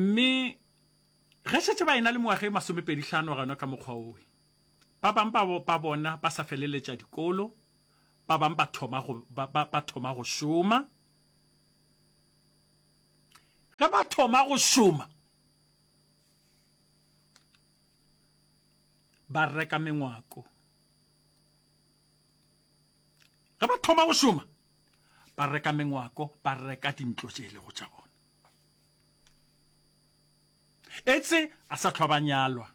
Mme ge šetše ba ena le mengwaga e masomepedihlano gona ka mokgwa wowe, ba bang ba, ba bona ba sa feleletša dikolo, ba bang ba thoma go, ba, ba, ba thoma go šoma. Ge ba thoma go šoma, ba reka mengwako. Ge ba thoma go šoma, ba reka mengwako, ba reka dintlo tše e lego tša bona. Etse a sa hlwa ba nyalwa.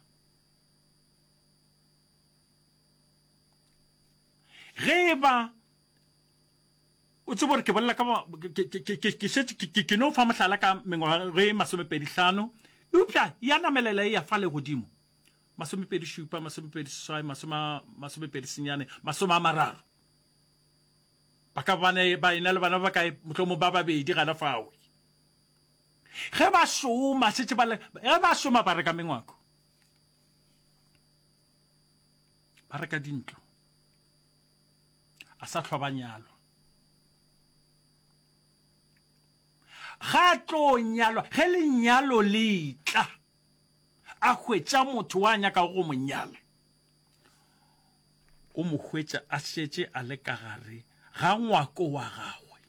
Ge e ba o tsebo gore ke bolela ka ke šetše ke no fa mohlala ka mengwaga e masomepedi hlano eupša ya namelela e ya fa legodimo masomepedi šupa masomepedi seswai masomepedi senyane masome a mararo ba ka bana ba ena le bana ba kae mohlomong ba babedi gana fao Ge ba šoma, šetše ba le, ge ba šoma ba reka mengwako, ba reka dintlo, a sa hlwa ba nyalwa. Ga tlo nyalwa, ge lenyalo le tla, a hwetša motho wa nyakago go mo nyala, o mo hwetša a šetše a le ka gare ga ngwako wa gagwe.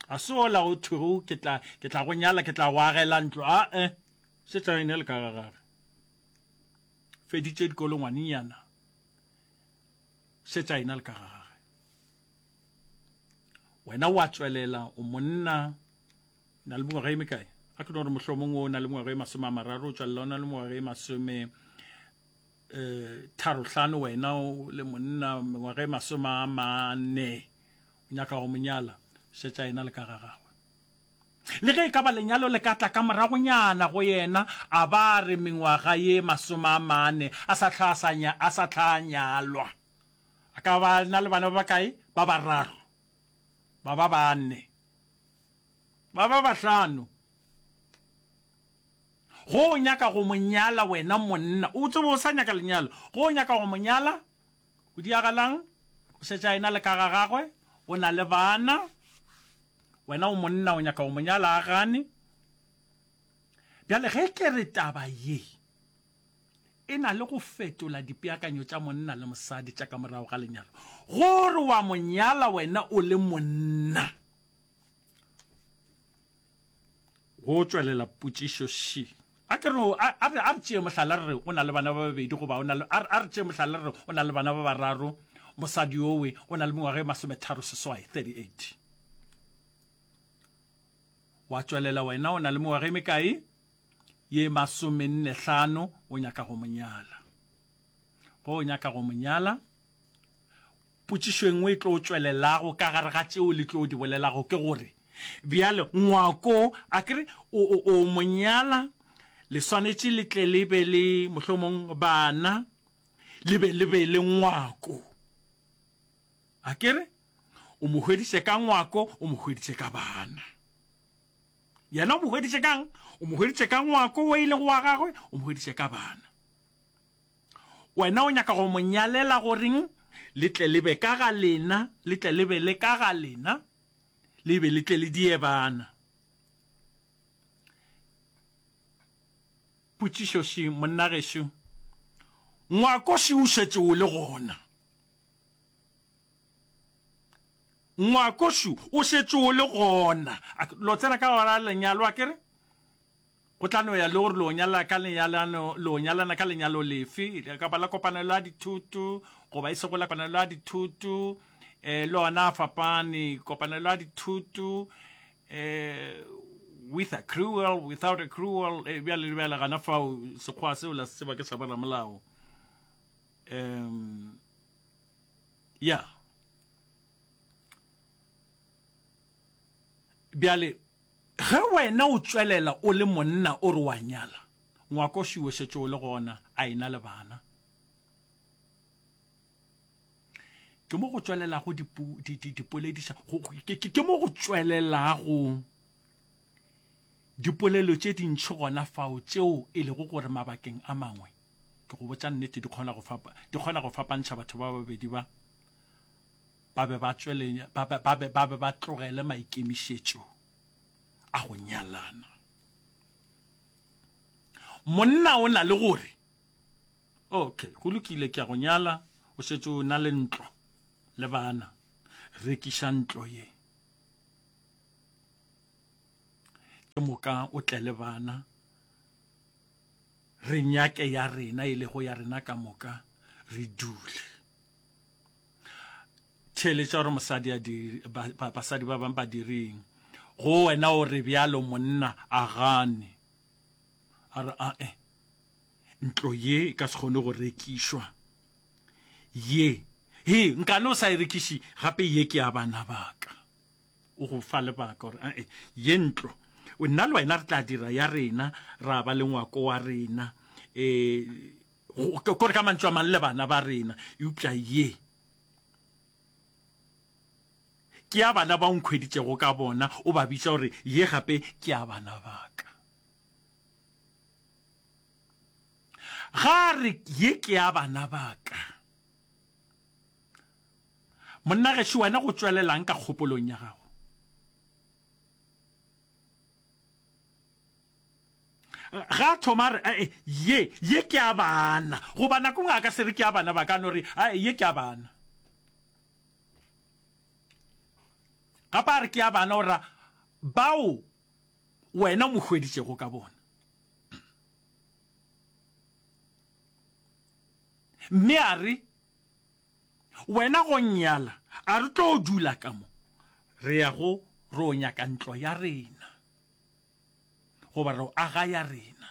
Ga se wola go thwego ke tla, ke tla go nyala, ke tla go agela ntlo, a-e. Se tla ene le ka ga gage. Feditše dikolo ngwanenyana. Se tla ena le ka ga gage. Wena wa tswelela, o monna, na le mengwaga e mekae? A ke no re mohlomong o na le mengwaga e masome a mararo, o tswelela o na le mengwaga e masome eh, tharo hlano, wena o le monna, mengwaga e masome a mane. O nyaka go mo nyala, šetša yena le ka ga gagwe. Le ge e ka ba lenyalo le ka tla ka moragonyana go yena, a ba a re mengwaga ye masome a mane a sa hlwa a sa nya, a sa hlwa a nyalwa, a ka ba na le bana ba bakae? Ba bararo, ba ba bane, ba ba bahlano. Go o nyaka go mo nyala wena monna, o tsebe o sa nyaka lenyalo, go o nyaka go mo nyala, O diragalang? O šetše a ena le ka ga gagwe, o na le bana. Wena o monna, o nyaka go mo nyala, a gane. Bjale ge ke re taba ye e na le go fetola dipeakanyo tša monna le mosadi tša ka morago ga lenyalo, gore wa mo nyala wena o le monna. Go tšwelela potšišo ši. A ke re, a, a re, a re tšee mohlala re re o na le bana ba babedi goba o na le, a, a re tšee mohlala re re o na le bana ba bararo, mosadi yowe o na le mengwaga e masometharo seswai, 38. Wa tšwelela wena o na le mengwaga e mekae? Ye masomenne hlano, o nyaka go mo nyala. Ge o nyaka go mo nyala, Potšišo e nngwe e tlo tšwelelago ka gare ga tšeo le tlo di bolelago ke gore, Bjale, ngwako, akere o, o, o mo nyala, le swanetše le tle le be le, mohlomong, bana, le be le be le ngwako. Akere? O mo hweditše ka ngwako, o mo hweditše ka bana. Yena o mo hweditše ka'ng? O mo hweditše ka ngwako o e lego wa gagwe, o mo hweditše ka bana. Wena o nyaka go mo nyalela goreng? Le tle le be ka ga lena, le tle le be le ka ga lena, le be le tle le diebana. Potšišo še, monna gešo, ngwako še o šetše o le gona. Ngwako še o šetše o le gona. Lo tsena ka gora lenyalo, a ke re? Go tla no ya le gore lo nyala ka lenyalano, lo nyalana ka lenyalo lefe, le ka ba la kopanelo ya dithoto, goba e sego la kopanelo ya dithoto, eh, le ona a fapane, kopanelo ya dithoto, eh, with a cruel, without a cruel, eh, bjale le bjale gana fao, sekgoa seo la se tseba ke sa ba ramolao. Um, yeah. Bjale, Ge wena o tšwelela o le monna o re o a nyala, ngwako šwi o šetše o le gona, a e-na le bana. Ke mo go tšwelelago dipu, di, di, dipolediša, go, ke, ke, ke mo go tšwelelago dipolelo tše dintši gona fao tšeo e lego gore mabakeng a mangwe, ke go botša nnete, di kgona go fapa, di kgona go fapantšha batho ba babedi ba. ba be ba tšwelenya ba be ba be ba be ba tlogele maikemišetšo a go nyalana monna o na le gore okay go lokile ke ya go nyala o šetše o na le ntlo le bana rekiša ntlo ye ke moka o tle le bana re nyake ya rena e lego ya rena ka moka re dule theeletša gore mosadi a di ba- ba- basadi ba bang ba direng go wena o re bjalo monna a gane a re ae ntlo ye e ka se kgone go rekišwa ye he nkane o sa e rekiše gape ye ke ya bana baka o go fa lebaka gore ae ye ntlo o nna le wena re tla dira ya rena ra ba le ngwako wa rena um Kore ka mantšu a mang le bana ba rena, eupša ye ke ya bana ba o nkhweditšego ka bona, o ba bitša gore ye gape ke ya bana ba ka. Ga a re ye ke ya bana ba ka, monna gešo wena go tšwelelang ka kgopolong ya gago? Ga a thoma a re, Ae, ye, ye ke ya bana. Goba nako nngwe a ka se re ke ya bana ba ka, a no re, Ae, ye ke ya bana. Gape a re ke ya bana, o ra, bao wena o mo hweditšego ka bona. Mme a re, Wena go nnyala, a re tlo dula ka mo, re ya go re o nyaka ntlo ya rena. goba re aga ya rena.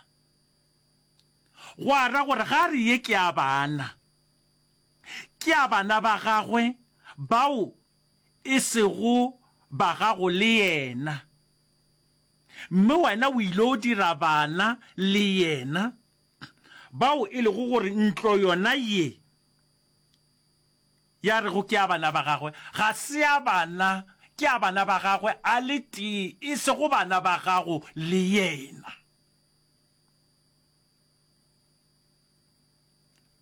Gwa ra gore ga re ye ke a bana, ke a bana ba gagwe bao e sego ba gago le yena, mme wena o ile o dira bana le yena, bao e lego gore ntlo yona ye Ya rego ke a bana ba gagwe, ga se a bana, ke a bana ba gagwe a le tee, e sego bana ba gago le yena.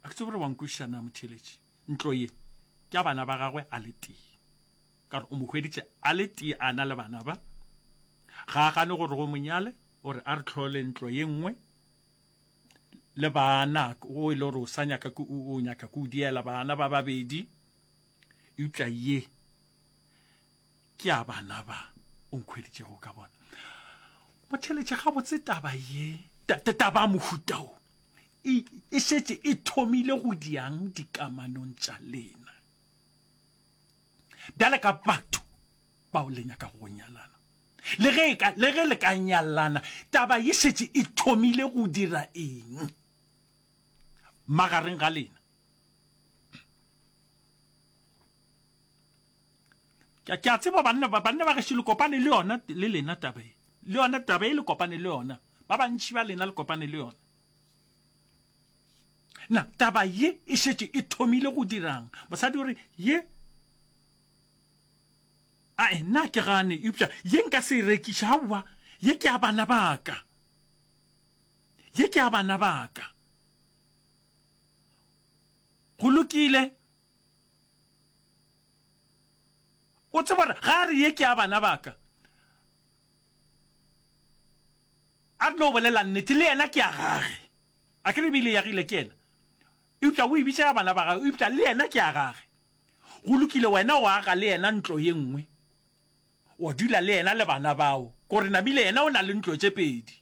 A ke tsebe gore wa nkwešiša na, motheeletši? Ntlo ye ke a bana ba gagwe a le tee, ka gore o mo hweditše a le tee a na le bana ba. Ga a gane gore go mo nyale, o re a re tlhole ntlo ye nngwe. le baana o e le gore o sa nyaka o nyaka ke o diela baana ba babedi eupša ye ke a bana ba o nkhweditšego ka bona motheletše gabotse taba ye taba mohuta o e šetše e thomile go diang dikamanong tša lena bjale ka batho bao le nyakago go nyalana le ge ka le ge le ka nyalana taba ye šetše e thomile go dira eng magareng ga lena ke a tseba banna ba banna ba gešo le kopane le yona le lena taba e le yona taba e le kopane le yona ba bantši ba lena le kopane le yona na taba ye e šetše e thomile go dirang mosadi o re ye Ae, nna ke gane, eupša ye nka se e rekiše, aowa, ye ke ya bana ba ka. Ye ke ya bana ba ka. Go lokile. O tseba gore ga a re ye ke ya bana ba ka, a re no bolela nnete, le yena ke ya gage. A ke re e be e le ya Gile ke yena? Eupša o e bitša ya bana ba gagwe, eupša le yena ke ya gage. Go lokile, wena o aga le yena ntlo ye nngwe, wa dula le yena le bana bao, gore namile yena o na le ntlo tše pedi.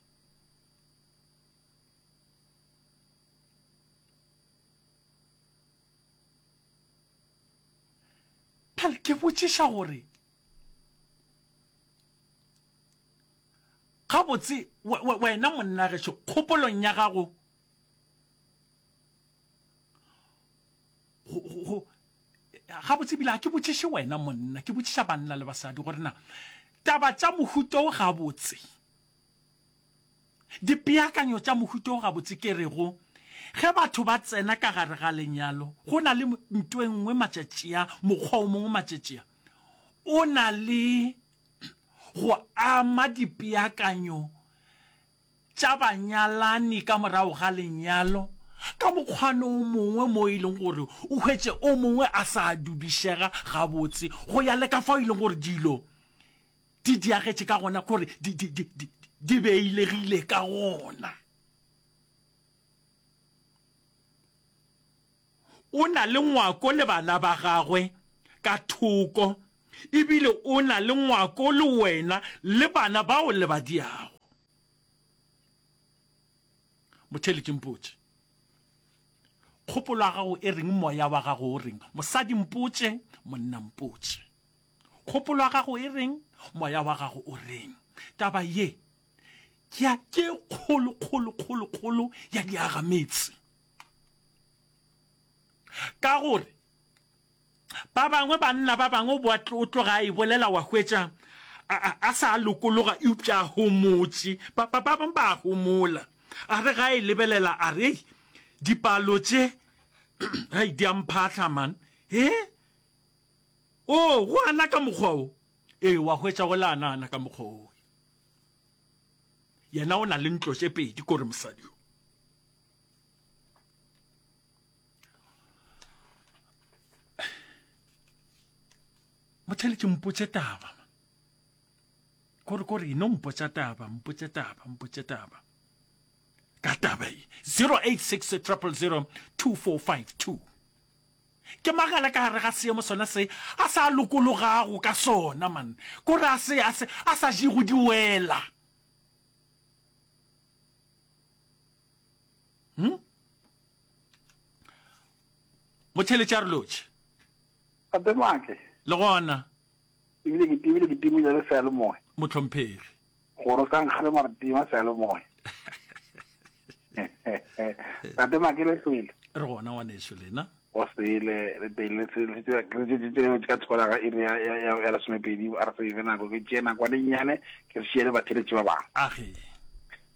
Bjale ke botšiša gore gabotse wena monna gešo kgopolong ya gago go ga botse bile ga ke botšiše wena monna ke botšiša banna le basadi gore na taba tša mohuto o ga botse dipeakanyo tša mohuto o ga botse ke re go ge batho ba tsena ka gare ga lenyalo go na le nto engwe matšatšia mokgwa o mongwe matšatšia o na le go ama dipeakanyo tša banyalani ka morago ga lenyalo ka mokgwano o mongwe mo e leng gore o hwetše o mongwe a sa dudišega gabotse go ya le ka fao e leng gore dilo di diagetše ka gona gore di, di, di, di, di beilegile ka gona. O na le ngwako le bana ba gagwe ka thoko, e bile o na le ngwako le wena le bana ba o lebadiago. Motheeletšimpotše, Kgopolo ya gago e reng? Moya wa gago o reng? Mosadimpotše, Monnampotše, kgopolo ya gago e reng? Moya wa gago o reng? Taba ye ke ya ke kgolo, kgolo, kgolo, kgolo ya diagametse. Ka gore ba bangwe banna ba bangwe o boa o tloga a e bolela wa hwetša a sa a lokologa eupša a homotše ba bangwe ba homola a re ga e lebelela a re dipalo tše hai di a mphatlha man e o go ana ka mokgwa o ee wa hwetša go le ana ana ka mokgwa o yena o na le ntlo tše pedi kore mosadi o motlhele ke mpotse taba kore kore no mpotsa taba mpotse taba mpotse taba ka taba e 086 triple 2452 ke magala ka gare ga seemo sona se a sa lokologago ka sona man kore a se a sa jego diwela hm motheletša re lotšhe gape matle le gona ebile ke tibile ke tibile le sa le moe motlhomphegi gore ka nkgale mara tima sa le moe tate make le sele re gona ngwaneso lena o sele re pele ka thola ga iri ya lesomepedi a re sebe nako ke tšee nakwane nnyane ke re šiele batheletše ba bangwe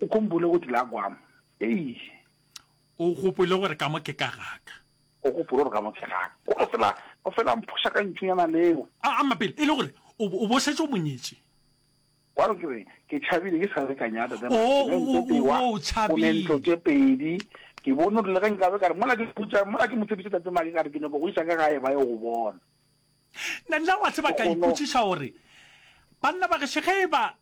ukhumbule ukuthi la kwam eish o gopole gore ka mo ke ka gaka o gopole gore ka mo ke gaka o re fela o fela mphoša ka ntšonyana leo a a mapele e le gore o bo- o bo setse o monyetše wa re kere ke tšhabile ke sa le ka nyata tsa Oh, o- o- o- tewa o tšhabile. ntlo tše pedi ke bone gore le ge nkabe ka re mola ke putsa mola ke mo tshepise tate mage ka re ke nyako go isa ka gae ba ye go bona nna wa tseba ka Gono- ipotšiša gore banna ba gešo ge e ba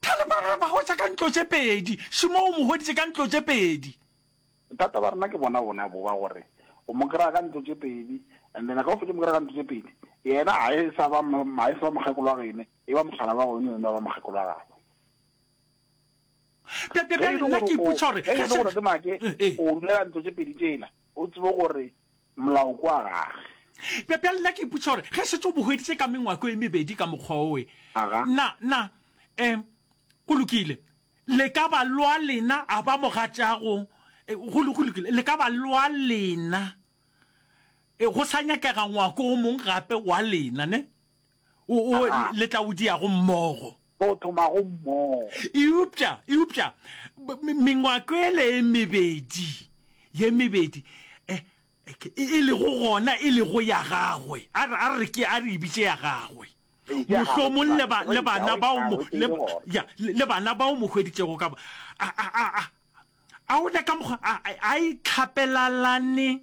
Thale ba re ba hwetša ka ntlo tše pedi, Šimo o mo hweditše ka ntlo tše pedi. Bothata ba rena ke bona bona bo ba gore o mo kry-a ka ntlo tše pedi and then ka o fetše mo kry-a ka ntlo tše pedi yena ga e sa ba ga e sa ba mokgekolo wa gene e ba mogala wa gone yone ba ba mokgekolo wa gagwe Bja- bja- ge e bjale le nna gore ke o- ipotša gore ge e le ge gore se- ke make Eh, eh. o dulela ntlo tše pedi tšela o tsebe gore Molao kwa gage. Bjale nna ke ipotša gore ge šetše o bo hweditše ka mengwako e mebedi ka mokgwa owe, na, na, um, go lokile, le ka ba lwa lena a ba mogatšago, go, go lokile, le ka ba lwa lena, go sa nyakega ngwako o mong gape wa lena, ne? O, o, A. le tla o diago mmogo. Tlo o thomago mmogo. Eupša, eupša, b, me, mengwako ele e mebedi, ye mebedi, e, e, e lego gona e lego ya Gagwe. A re, a re ke, a re e bitše ya Gagwe. Re bitše ya Gagwe, Mohlomong le, ba, le bana Yahweh, bao mo, Yahweh, le, ke gona. ya, le, le bana bao mo hweditšego ka bo. A, a, a, a, a o le ka mokgwa, a, a, a e tlhapelalane.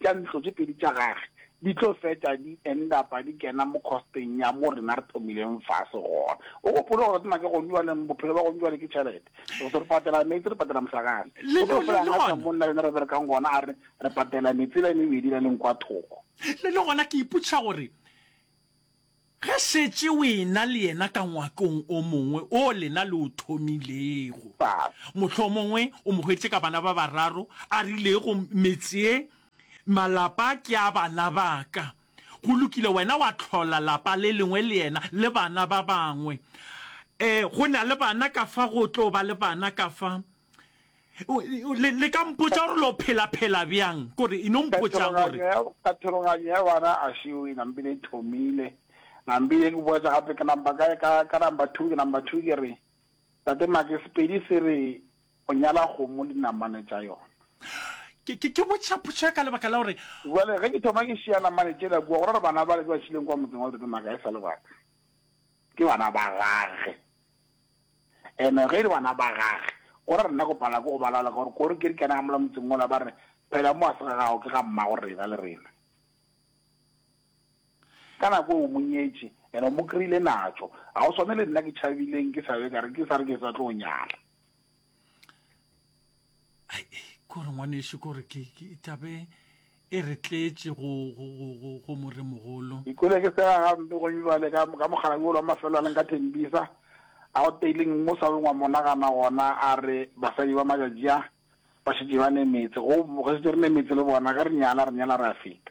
tša ntlo tše pedi tša gage di tlo fetša di endapa di kena mo kgosteng ya mo rena re thomileng fase gona. O gopole gore tsena ke gone jwaleng bophelo ba gone jwale ke tšhelete. Re se re patela meetse, re patela mohlakane. O tlo fela nga sa monna rena re berekang gona a re re patela metsela e mebedi la leng kwa thoko. Le le gona ke ipotšiša gore. Ge šetše o e-na le yena ka ngwakong o mongwe o lena le o thomilego, mohlomongwe o mo hweditše ka bana ba bararo, a rilego, metse ye, malapa ke a bana ba ka. Go lokile, wena wa hlola lapa le lengwe le yena, le bana ba bangwe. Ee, go na le bana ka fa, go tlo ba le bana ka fa. le ka mpotsa gore lo phela phela bjang kore e no mpotsa gore kathologanyo ya bana a seo e nampile e thomile nampile ke boetsa gape ke namba ka ka ka namba 2 ke namba 2 ke re tate make sepedi se re o nyala kgomo le namane tša yona ke ke ke botša potša ka lebaka la gore jale ge ke thoma ke šia namane tšela kua gore re bana ba le ba šileng kwa motseng wa tate make a e sa le baka ke bana ba gage Ene ge e le bana ba gage, o ra rena go pala ke go ba laola ka gore kore ke re kena ga mola motseng wola ba re, Phela mo a se ga gago ke ga mmago rena le rena. Ka nako eo o mo nyetše, ene o mo kry-ile natšo. Ga go swane le nna ke tšhabileng ke sa be ka re ke sa re ke sa tlo nyala. kore ngwaneso kore ke tabe e re tletše go moremogolo ikole ke tsega gampe gone jale ka mogalabi olo wa mafelo a leng ka thembisa a go teileng mo sa bengwa monagana gona a re basadi ba majajia ba šetse ba ne metse go setse re ne metse le bona ka re nyala re nyala re a feta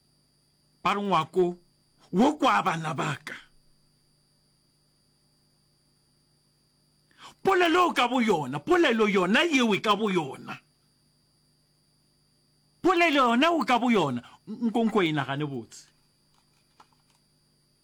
Ba re, Ngwako wo kwa bana ba ka. Polelo ka boyona, polelo yona yewe ka boyona, polelo yona wo ka boyona, nko nko e nagane botse.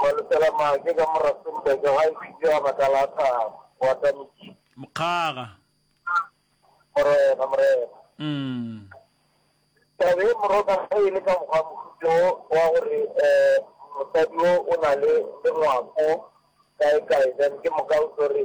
Malesela Maake ka mo Rustenburg ga e fihle ka baka la thaba, go ata metšhini. Mokgaga. Morena, Morena. Umm. Taba ye Moroka ge e le ka mokgwa mohuto wo wa gore um mosadi wo o na le lengwako kae kae then ke moka o tlo re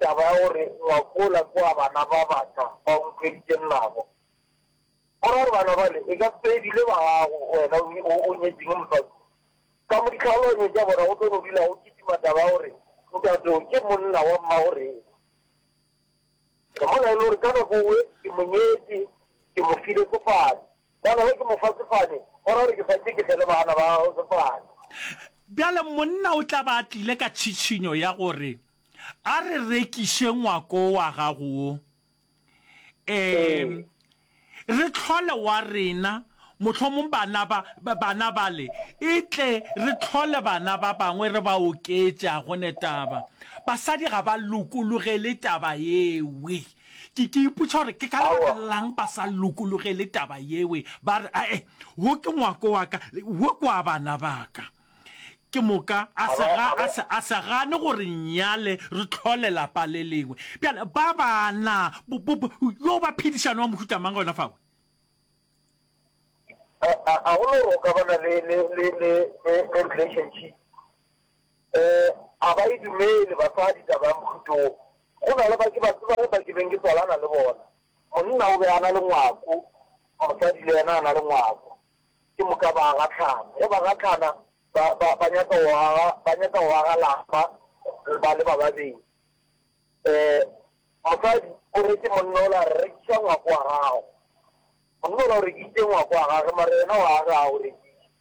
Taba ya gore ngwakola ke wa bana ba baka ba o nthweditšeng nabo, go ra gore bana bale e ka se be bile ba gago wena o o nyetšeng mosadi ka mo ditlhaloganyo tša bona go tlo no dula go kitima taba ya gore ntateo ke monna wa mmagorena. Re mola e le gore ka nako e ke mo nyetše, ke mo file sefane. Ka gore ke mo fa sefane, go ra gore ke santše ke fele bana ba gago sefane. Bjale monna o tla ba a tlile ka tšhitšhinyo ya gore a re rekiše ngwako wa gago wo, ee, re tlhole wa rena, mohlomong bana ba, bana bale, e tle re tlhole bana ba bangwe re ba oketše. A gone taba. Basadi ga ba lokologele taba yewe. Ke, ke ipotša gore ke ka lebaka Aowa. la'ng ba sa lokologele taba yewe, ba re, Ae, wo ke ngwako wa ka, le, wo ke wa bana ba ka. Ke moka, a se, ga, a se, a se gane gore nnyale re tlhole lapa le lengwe. Bjale, ba bana, bo, bo, bo, yo ba phedišano wa mohuta mang gona fao? A, a, a go no roka ba na le, le, le, le, le, le relationship? Eh, a ba e dumele, basadi, taba ya mohuto wo. Go na le ba ke ba tsebago ba ke beng ke tswalana le bona. Monna o be a na le ngwako, mosadi le yena a na le ngwako. Ke moka ba gahlana. Ge ba gahlana, ba, ba, ba nyaka go aga, ba nyaka go aga lapa, ba le ba babedi. Eh, mosadi o re ke monna ola, Rekiša ngwako wa gago. Monna ola o rekisitše ngwako wa gagwe, mara yena o a aga, ga o rekiše.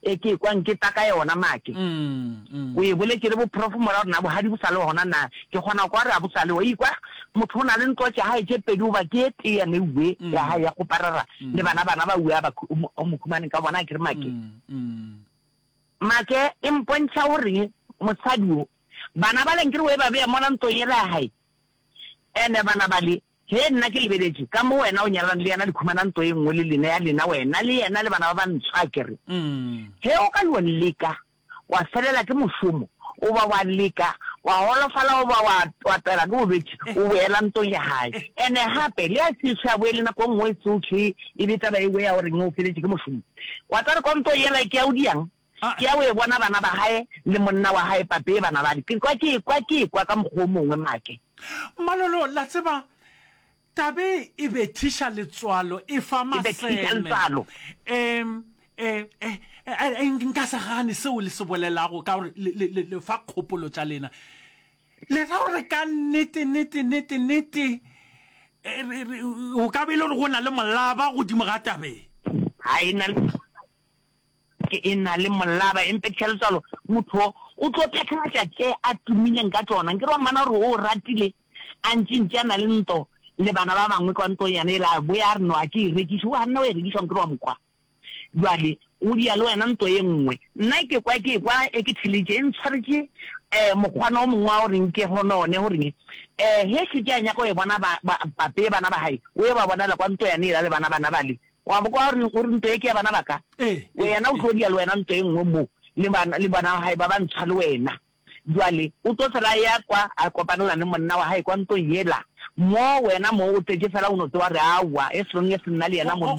E ke ekwa nke ta ka yona make. O e boletše le boprof mora gore na bohadi bo sa le gona na. Ke kgona kwa re a bo sa le. Wa ikwa? Motho o na le ntlo tša gae tše pedi goba ke e tee ya meuwe ya gae ya go parara le bana bana ba uwe a ba o mo humaneng ka bona a kere make. Make e mpontšha o reng mosadi o bana ba le nkere o e ba beya mola ntlong yela ya gae ene bana ba le. Ge nna ke lebeletše ka mo wena o nyalane le yena le khumana ntlo e nngwe le lena ya lena, wena le yena le bana ba bantsho, a ke re, Ge o ka yo leka wa felela ke mošomo, goba wa leka wa golofala goba wa twatela ke bolwetši, o boela ntong ya gae. And-e gape, le a se sa boele nako e nngwe e tsohle e be taba e we ya gore eng o feletše ke mošomo. Wa tla re, Konto yela e ke ya o diang? Ke ya go e bona bana ba gae le monna wa gae Papee ba na bale. Ke kwa ke ekwa ke ekwa ka mokgwa o mongwe make. Malolo, la tseba, taba e e bethiša letswalo, e fa maseme. E bethiša letswalo. Em, e, e, e, e, nka se gane seo le se bolelago ka gore le, le, le, le fa kgopolo tša lena. Le ra gore ka nnete, nnete, nnete, nnete, e, re, re, go ka ba e le gore go na le molaba godimo ga taba e. Ga e na le. Ke e na le molaba empetša letswalo, motho wo o tlo phethagatša tše a tumileng ka tšona. Nke re wa mmona gore o o ratile, a ntšintši a na le nto le bana ba bangwe kwa ntong yane yela, a boya a re, No, a ke e rekiše. O a nna wa e rekiša, nke re wa mo kwa. Bjale o dia le wena nto ye nngwe. Nna ke kwa, ke ekwa e ke theletše, e ntshwaretše um mokgwana wo mongwe wa go reng ke honone, go reng um ge e šetše a nyaka go e bona ba, ba, pape bana ba gae, o ye ba bonala kwa nto yane yela le bana bana bale, Wa bo kwa gore gore ntwa e ke ya bana ba ka? Wena o tlo dia le wena ntwa e nngwe mo le bana le bana ba hae ba ba ntsha le wena. Jwale o tlo fela ya kwa a kopanela le monna wa hae kwa ntlong yela mo wena mo o tletše fela o no tsewa re awa e song e se nna le yena mo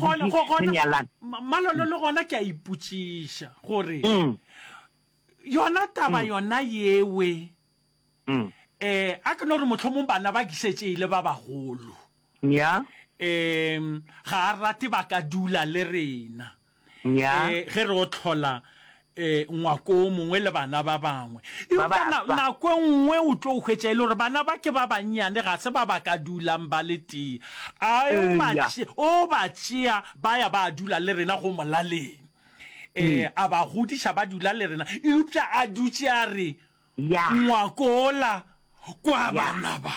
re nyalang. Malolo le gona ke a ipotšiša gore yona taba yona yewe Ee, a ke no re mohlomong bana ba ke šetše e le ba bagolo. Nnyaa. Ee, ga a rate ba ka dula le rena. Nnyaa. Ee, ge re o tlhola ee ngwako o mongwe le bana ba bangwe. Eupša nako e nngwe o tlo hwetša e le gore bana ba ke ba bannyane ga se ba ba ka dulang ba le tee. A o ba tšea ba ya ba dula le rena go molaleng. Ee, a ba godiša ba dula le rena eupša a dutše a re, Ya. Ngwakola kwa Ya. bana ba.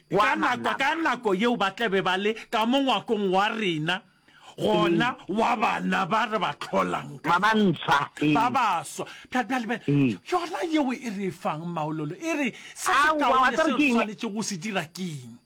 Kwa Ka bana nako, ka ba. nako yeo ba tla be ba le ka mo ngwakong wa rena, gona wa bana ba re ba tlholang ka Ba ba gona. ntswa. Ee. ba baswa Bja- bjale be- Ee. yona yeo e re e fang maololo e re se Aowa, wa sekaone tseba se ke re eng? swanetše go se dira keng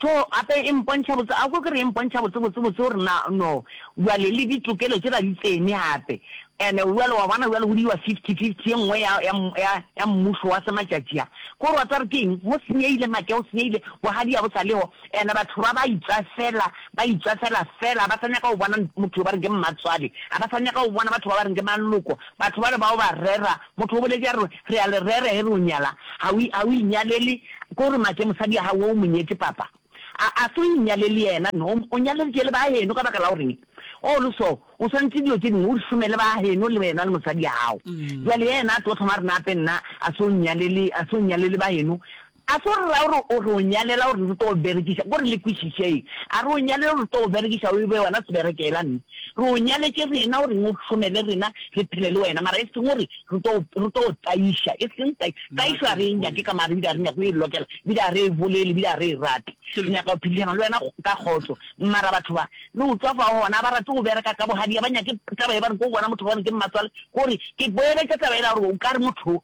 Tho gape e mpontšha botse, a ko ke re e mpontšha botse botse botse gore na no bjale le ditokelo tše la di tsene gape. And bjale wa bona bjale go diwa fifty fifty ye nngwe ya ya ya ya mmušo wa se matšatši a. Ko gore wa tseba gore ke eng go senyehile make go senyehile bogadi ya bo sa leho and batho ba ba itswafela ba itswafela fela ba sa nyaka go bona motho yo ba reng ke mmatswale ga ba sa nyaka go bona batho ba ba reng ke maloko batho bale bao ba rera Motho o boletše a re, Re a le rera ge re o nyala. Ga o, ga o inyalele. Ke gore make mosadi wa gago o mo nyetše, papa. A, a se o inyalele yena? No, o nyaleditše le ba heno. Ka baka la goreng? Oo, le so. O swanetše dilo tše dingwe o di hlome le ba heno, le wena le mosadi wa gago. Bjale yena a tlo thoma a re, Nape nna, a se o nnyalele, a se o nnyalele ba heno. A se gore ra gore o re o nyalela gore re tlo go berekiša, ko re le kwešišeng. A re o nyalele gore re tlo go berekiša o e be wena seberekela nna. Re o nyaletše rena gore eng o hlomele rena re phele le wena mara e seng gore re tlo re tlo go taiša. E seng tai, taišo a re e nyake ka mare bile a re nyake go e lokela bile a re e bolele bile a re e rate. Re nyaka go phedišana le wena ka kgotso. Mara batho ba, le utswa fa gona, a ba rate go bereka ka bogadi, a ba nyake taba e ba re ko gona motho gore ke mmatswale gore ke boeletša taba ela gore o ka re motho o,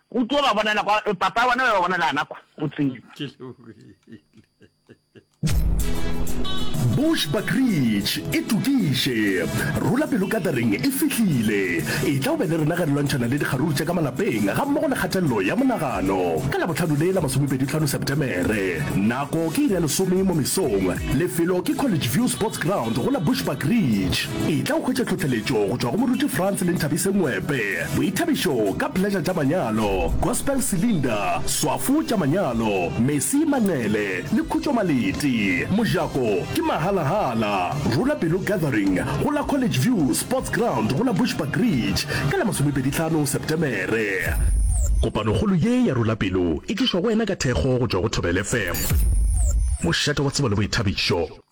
Go tlo ba bonala kwa, papa bona ba bonala ana kwa, o tsebe. Ke Bush Buckridge e tokiše. Rula Pelo Gathering e fihlile. E tla o be le rena ge re lwantšhana le dikgaruru tša ka malapeng ga mmogo le kgatelelo ya monagano ka Labohlano le la masomepedi-tlhano Septemere. Nako ke iri ya lesome mo mesong. Lefelo ke College View Sports Ground go la Bush Buckridge. E tla o hwetša tlhohleletšo go tšwa go moruti Frans le Nthabise Ngwepe. Boithabišo ka Pleasure tša Manyalo, Gospel Cylinder, Swafo tša Manyalo, Mesi Manqele le Khutšo Maleti. Mojako ke mahala-hala. Rula Pelo Gathering go la College View Sports Ground go la Bushbuck Ridge ka la masomepedi tlhano Septemere. Kopanokgolo ye ya Rula Pelo e tlišwa go wena ka thekgo go tšwa go Thobela FM, mošate wa tsebo le boithabišo.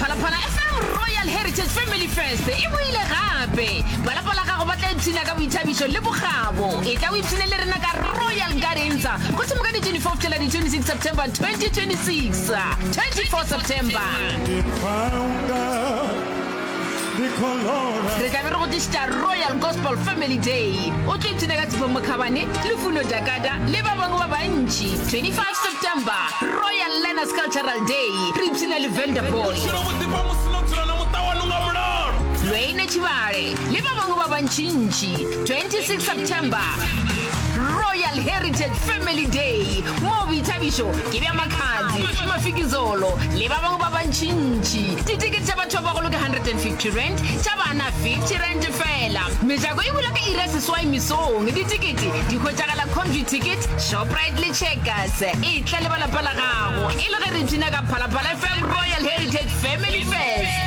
phalaphala fm royal heritage family fest e boile gape balapa la gago ba tla ipshina ka boithabišo le bokgabo e tla o ipshine le rena ka royal gardens go thoma ka di-24 fela di-26 september 2026 24 september re tlabe re go tlišitša royal gospel family day o tlo ipshina ka tshifo mokhabane le funo jakada le ba bangwe ba bantši 25 september royal learners cultural day re ipshina le vanderball lweine tšhibale le ba bangwe ba bantšintši 26 september royal heritage family day moo boithabišo Ke bea Makhadzi, Mafikizolo le ba bangwe ba bantšintši ditekete tša batho ba bagolo ka R150, tša bana R50 fela. Mejako e bula ka iri ya seswai mesong. Ditekete di hwetšagala Comduticket, Shoprite le Checkers. E tla le ba lapa la gago e le ge re ipshina ka Phalaphala FM Royal Heritage Family Fest.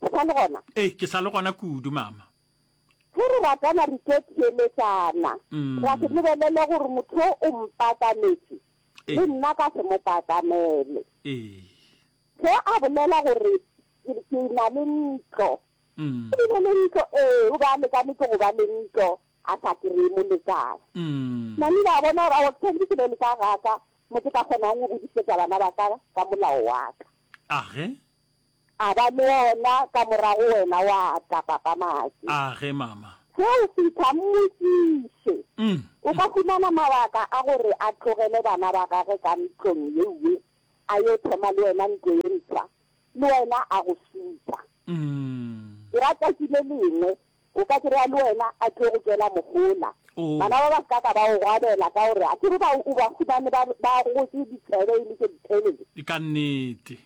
Ke sa le gona? Ee, ke sa le gona kudu, Mama. Ge re ratana re tlo theeletšana, ra se lebelele gore motho yo o mpaakanetše le nna ka se mo paakanele. Ge a bolela gore ke na le ntlo, e be e le ntlo, ee, o be a lekanetše go ba le ntlo, a sa kry-e molekane. Mani la bona gore ao tshwanetse ke be le ka gaka mo ke ka kgonang go godisetsa bana ba ka ka molao wa ka. Age. A ba le ona ka morago wena wa tla papa maki. Age mama. Ge o fitlha mmotšiše. O ka fumana mabaka a gore a tlogele bana ba gage ka ntlong ye nngwe a yo thoma le wena ntlo ye ntshwa le wena a go supa. Ke rata ke le lengwe O ka se re a le wena a tlo go tšwela mohola. Bana ba ba se ka ka ba go gwabela ka gore a ke re ba o ba fumane ba ba gotse ditsebe e le tše ditelele. E ka nnete.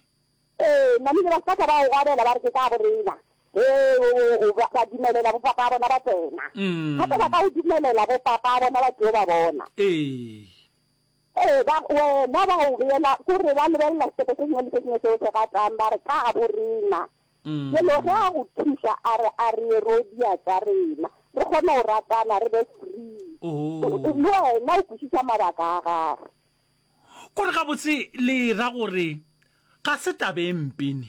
Ee, namile ba se ka ka ba go gwabela ba re ke ka borena. Ge o o ba ba dumelela bo papa bona ba tsena. Gape ba ka go dumelela bo papa bona ba tlo ba bona. Ee. Ee, ba wena ba go beela ko re ba lebelela setepo se sengwe le se sengwe se o se ratang ba re ka borena. Jelo ge a go thuša a re a re Erodia tša rena, re kgone go ratana re be free. Gore le wena o kwešiša mabaka a gagwe. Gore gabotse le ra gore ga se taba e mpe ne?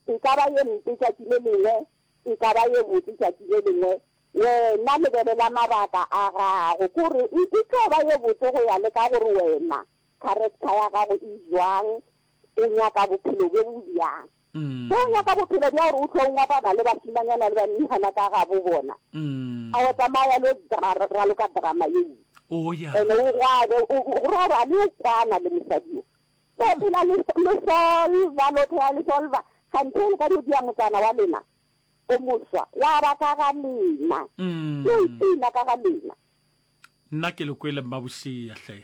E ka ba ye mpe tšatši le lengwe, e ka ba ye botse tšatši le lengwe. Wena lebelela mabaka a gago, kore e tlo ba ye botse go ya le ka gore wena Character ya gago e jwang? O nyaka bophelo bjo bo bjang? Ge o nyaka bophelo bja gore o tlo ngwabana le bašimanyana le bannihana ka gabo bona, a wa tsamaya le raloka drama ye ntsi. And o gwabe, go robale o kwana le mosadi yo. So phela le solva, lo phela le solva. Kganthe le ka di dia motsana wa lena, o moswa, wa ba ka ga lena. Ke o ipina ka ga lena. Nna ke le kwele mmabošea hle.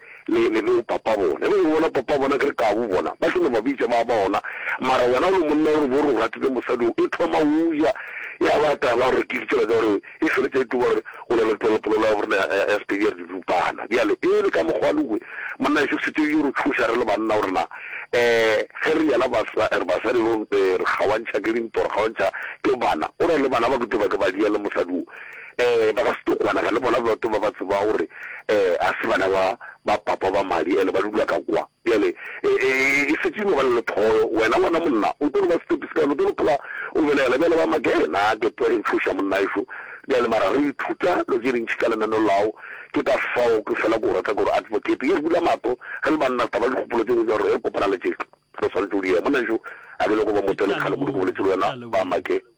Le, le beng papa bona, e bego e bona papa bona, ke re kabu bona, ba tlo no ba bitša ba bona, mara wena o le monna o re bo re o ratile mosadi o, e thoma o ja, ya ba taba gore ke ditsela tsa gore e feletša e tuba gore o na le polelo, polelo ya borena ya, ya, ya Sepedi ya re didupana. Bjale e le ka mokgwa le kwe, monna ešo se tsebe yo re thuša re le banna gore na um ge re yela basa, re basadi re, re kgaoantšha ke dintwa, re kgaoantšha ke bana, o re le bana ba ke tlo ba ke ba diya le mosadi o, Ee, ba ka se tlo kwanega le bona Loto ba ba tseba gore um ga se bana ba ba papa ba madi and ba dula ka kwa. Bjale e, e, e šetše e no ba le lethoyo. Wena ngwana monna o tlo no ba setepi se kae? O tlo no phela o belegela bjalo ba make? Na ke tlo re tšhoša monnaešo. Bjale mara re ithuta lo tše dintši ka lenaneo lao. Ke ka fao ke fela ke o rata gore Advocate e re bula mahlo re le banna taba dikgopolo tše dingwe tša gore re kopana le tše re swanetše go di ea. Monnaešo a ke nyako ba mo tšele kgale kudu ke boletše le wena ba make.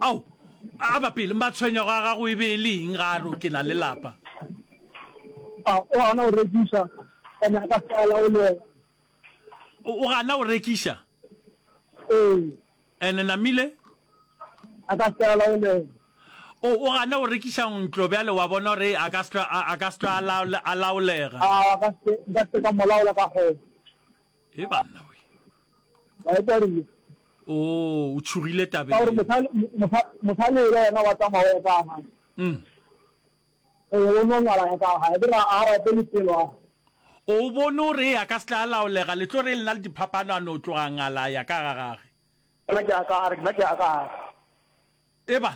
Ao, a ba pele, matshwenyago a gago e be e le eng ga a re, Ke na le lapa? A o gana go rekiša, o nyaka fela o le. O gana go rekiša? Ee. And namile? A ka fela o le. O o gana go rekiša ntlo bjale wa bona gore a ka se a ka se a laolega? A ka se ka se ka molaola ka go. e banna we wa e twareng o o tshogile tabeng ka gore mosale mosale ela yena wa tsamao ya ka ha mm o o no ngala ya ka ha e dira a ra pele pelo a o bone o re ya ka setla laolega le tlo re lena le diphapano a no tloga ngala ya ka ga gage nna ke ya ka a re nna ke ya ka ha e ba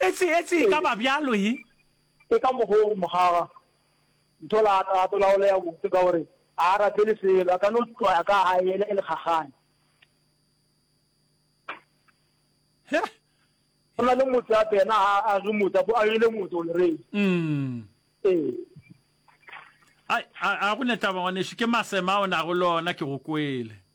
e se e se ka ba bjalo e e ka mogong mogaga Ntho la ka gape la go lea botse ka gore a a rapele selo, a ka no tlwaya ka a yela e le kgagane. Go na le motse gape yena a a re motse a yele motse already. Ee. Ai, a, a go ne taba ngwanešu, ke masema a o nago le ona, ke go kwele.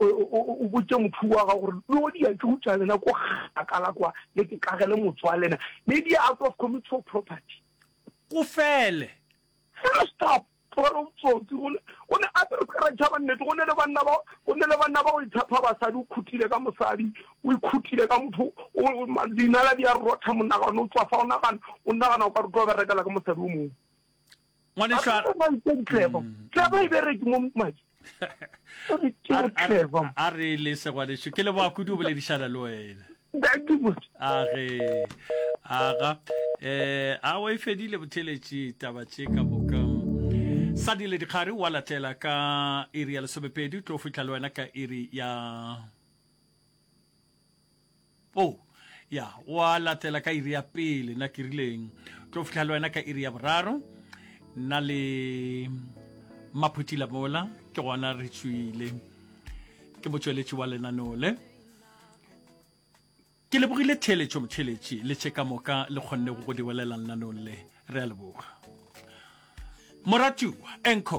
o botse motho wa gago gore lo di a tšo tša lena ko gakala kwa le ke kagele motswa lena ne di out of community of property go fele fela stop gore o tsotsi gone o ne a tsere tsere tšhaba nnete go ne le banna ba go ne le banna ba go itshepha basadi o khutile ka mosadi o ikhutile ka motho o dinala di a rotha monagano o tswa fa o nagana o nagana o ka rutwa berekela ka mosadi o mongwe ngwaneša tlebo tlebo e bereke mo madi a re le segwaneso ke leboa kudu o boledišana le wena age aga um a wa e fedile botheletši taba tše ka boka sa dile dikgare wa latela ka iri ya lesomepedi tlo fitlha le wena ka iri ya po ya wa latela ka iri ya pele na ke rileng tlo fihla le wena ka iri ya boraro na le maphutila mola ke gona re tswile ke motsweletši wa lenaneo le ke lebogile theeletšo motheletši le tše ka moka le kgonne go go diwelelang lenanong le re a leboga moratiwa enco